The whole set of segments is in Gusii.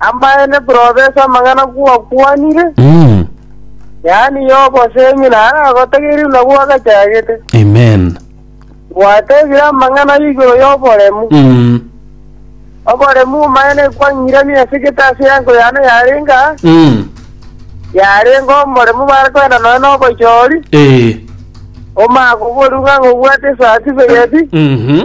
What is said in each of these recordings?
Amaene profesa amang'ana gwakwanire, Mm. yaani y'oboseemi naro agotegeire buna gwagachagete. Amen. Gwatebire amang'ana igoro y'oboremu. Mm. Oboremu omaene kwang'irania ase gete ase yango yane yarenga, Mm. yarenga omoremu barekwenda noe n'obochori, Eh. omagobori ng'a ng'obwate certificate, Mhm.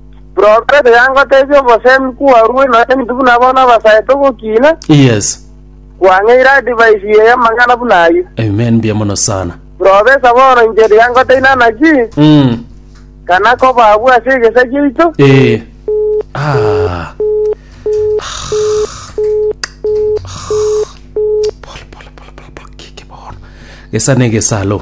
Profeta yangotebia obosemi kwarue nonya intwe buna abana abasae togokina, Yes. kwang'eire advice ye y'amang'ana buna ayio. Amen. Mbuya mono sana. Profesa bono inche riangoteine anaki, Mm. kana koba abwo ase egesa giaito, Eh. Ah. Pole, pole, pole, pole, pole. Kiki bono. Gesa ne gesa, alo.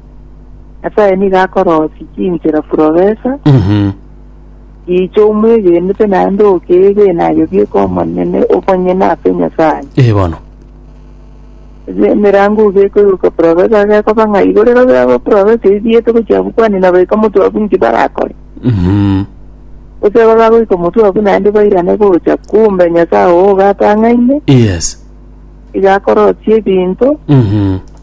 Nyasae nigo akorosia chinchera purobesa Mhm. gicha omwegenete naende okeega enayo bieka Omonene obonyene ase Nyasae. Ee bono. Ase emerango iga ekoigoka purobesa agekoba ng'a igo rero biabo purobesa ebi biete gochia abwo kwani na baika omotwe abwo inki barakore. Mhm. Gose aba bagoika omotwe abwo naende bairane gocha, kumbe Nyasae oo ogatang'aine Yes. iga akorosia ebinto Mhm.